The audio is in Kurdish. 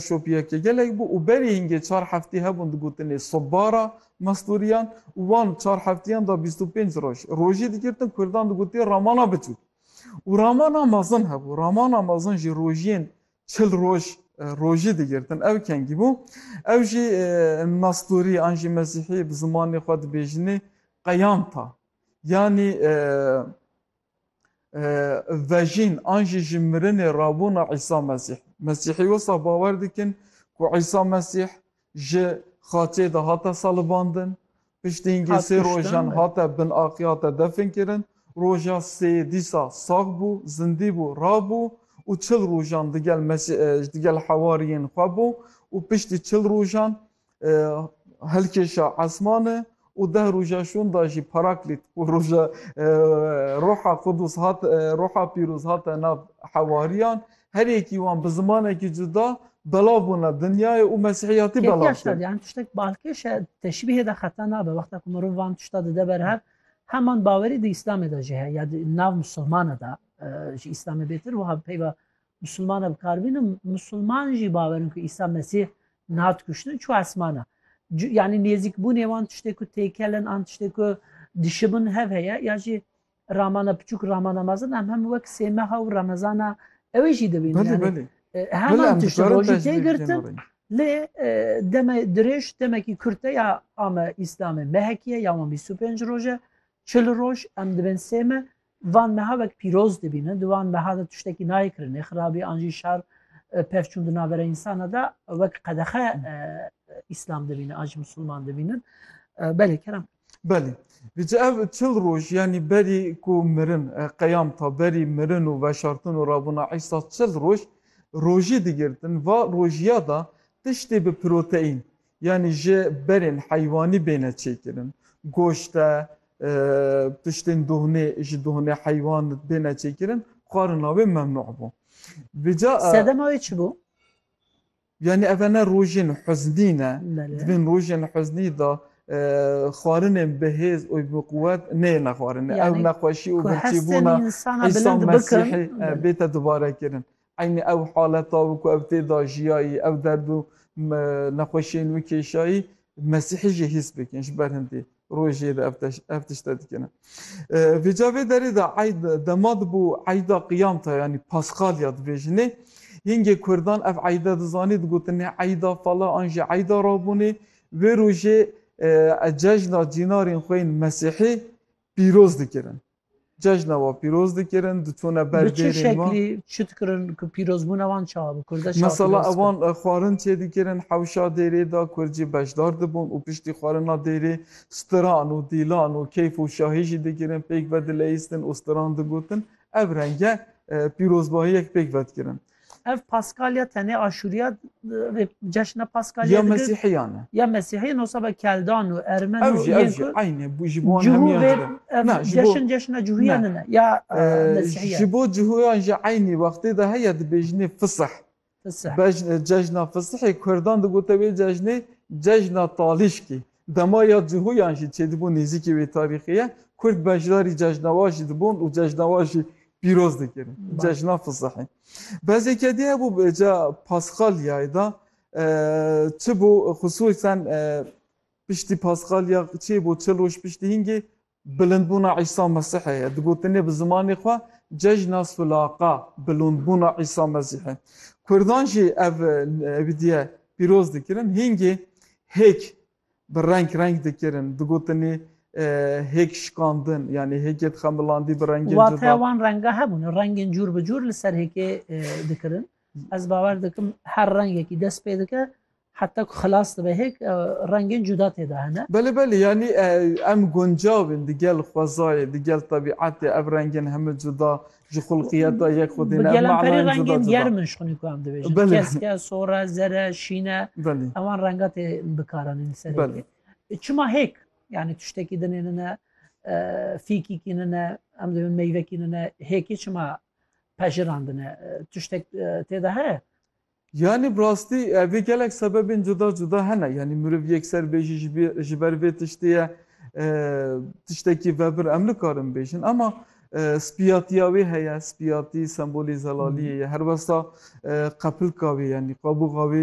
Şopiyeke gelek bû û berî hingê çar heftî hebûn digotinê Sobbara Mestûriyan û wan çar heftiyan da bîst û pênc roj. Rojî digirtin kurdan digotiye ramana biçûk û ramana mezin hebû. Ramana mezin jî rojiyên çil roj rojî digirtin. Ew kengî bû. Ew jî Mestûrî an jî Mesîhî bi zimanê xwe dibêjinê qeyanta yanî vejîn an jî ji mirinê rabûna Îsa Mesîh. Mesîhî wisa bawer dikin ku Îsa Mesîh ji xaçê de hate salibandin, piştîngî sê rojan hate bin axê hate definkirin, roja sêyê dîsa sax bû, zindî bû, rabû û çil rojan digel digel hewariyên xwe bû û piştî çil rojan hilkêşa esmane û deh roja şûn da jî Paraklît û roja roha Qudûs hat roha pîroz hate nav hewariyan her yekî wan bi zimanekî cuda belav bûne dinyayê û mesîhiyatî belav kir. Yani tiştek balkêş e teşbîhê de xeta nabe wexta ku mirov van tişta dide ber hev heman bawerî di îslamê de jî heye ya di nav musilmane de ji îslamê bêtir wiha peyva Misilmane bi kar bînin, misilman jî bawerin ku Îsa Mesîh nat kuştin çû esmana. Yanî nêzîkbûnê wan tiştê ku têkelin an tiştê ku dişibin hev heye ya jî ramana piçûk ramana mezin em hem wek sê meha û remezana ewê jî dibînin. Belê belê. Heman tiştê rojî tê girtin lê deme dirêj demekî kurt e ya ame Îslamê mehekî ye ya wan bîst û pênc roj e. Çil roj em dibên sê me Van meha wek pîroz dibînin, di van meha de tiştekî nayê kirinê, xirabî an jî şer pevçûn di navbera însana de wek qedexe îslam dibînin an jî misilman dibînin. Belê kerem. Belê. Dice ev çil roj yanî berî ku mirin qeyam ta berî mirin û veşartin û rabûna Îsa çil roj rojî digirtin va rojiya da tiştê bi proteîn Yanî ji berên heywanî bêne çêkirin. Goşt e, tiştên dohnê ji dohnê heywan bêne çêkirin, xwarina wê memnû bû. Vêca Sedema wê çi bû? Yanî ev ne rojên huznî ne. Di vîn rojên huznî de xwarinên bihêz û biquwet neyêne xwarinê. Ew nexweşî û birçîbûna Îsa Mesîhê bête dubarekirin. Eynî ew haleta û ku ew tê de jiyayî, ew derd û nexweşiyên wî kêşayî, Mesîhî jî hîs bikin, ji ber hindî rojê de ev tişt e dikine. Vê ca vê derê de eyd dema dibû eyda qiyamta yanî paskalya dibêjinê. Hingê kurdan ev eyda dizanî digotinê eyda fala an jî eyda rabûnê. Wê rojê cejna cînarên xwe yên mesîhî pîroz dikirin. Cejna wan pîroz dikirin, diçûne ber Bi çi dêrên wan. şeklî çi dikirin ku pîrozbûna wan çawa bi kurdê çawa Mesela pîroz dikin? evan xwarin çêdikirin hewşa dêrê de kurd jî beşdar dibûn û piştî xwarina dêrê stiran û dîlan û keyf û şahî jî dikirin, pêk vedileyîstin û stiran digotin. Ev renge pîrozbahiyek pêk vedikirin. Ev Paskalya tenê Aşûriya rê ceşna Paskalya Ya Mesîhiyan e. Ya Mesîhiyan o saba Keldan û Ermen Ev jî ev jî eyne bû ji bo hemiyan jî re. Ev ceşn ceşna cihûya ne ne ya Mesîhiyan. Ji bo cihûyan jî eynî wextê de heye dibêjinê Fisih. Fisih. Bej cejna Fisihê Kurdan digote wê cejnê cejna talîşkî. Dema ya cihûyan jî çêdibû nêzîkî wê tarîxê ye, kurd beşdarî cejnawa jî dibûn û cejnawa jî pîroz dikirin. Cejna fizihî. Bezêke dî hebû bi ca Paskalyayê de çi bû xisûsen piştî Paskalya çê bû çil roj piştî hîngê Bilindbûna Îsa Mesîhê ye. Digotinê bi zimanê xwe Cejna Sulaqa, Bilindbûna Îsa Mesîhê. Kurdan jî ev êdîye pîroz dikirin. Hîngê hêk bi reng reng dikirin. Digotinê hêk şikandin yanî hêkê dixemilandî bi rengên cuda. Wateya wan renga hebûn. Rengên cûr bi cûr li ser hêkê dikirin. Ez bawer dikim her rengekî dest pê dike Heta ku xilas dibe hêk rengên cuda tê de hene. Belê belê yanî em guncav in di gel xwezayê, di gel tebîetê ev rengên heme cuda ji xulqiyeta yek xwe dîne. Bi gelemperî rengên germ in ji xwinî ku em dibêjin. Keske, sore, zere, şîne ewan renga tê bikaranîn li serê tê. Çima hêk yanî tiştekî dinê nine fîkîkî nine em dibin meyvekî nine hêkî çima pejirandine tiştek tê de heye? Yanî bi rastî vê gelek sebebên cuda cuda hene. Yanî miriv yekser bê jî ji ber vê tiştê ye tiştekî vebir em nikarin bêjin. Ema spiyatiya wê heye, spiyatî sembolê zelaliyê ye. Her westa qepilka wê yanî qabûxa wê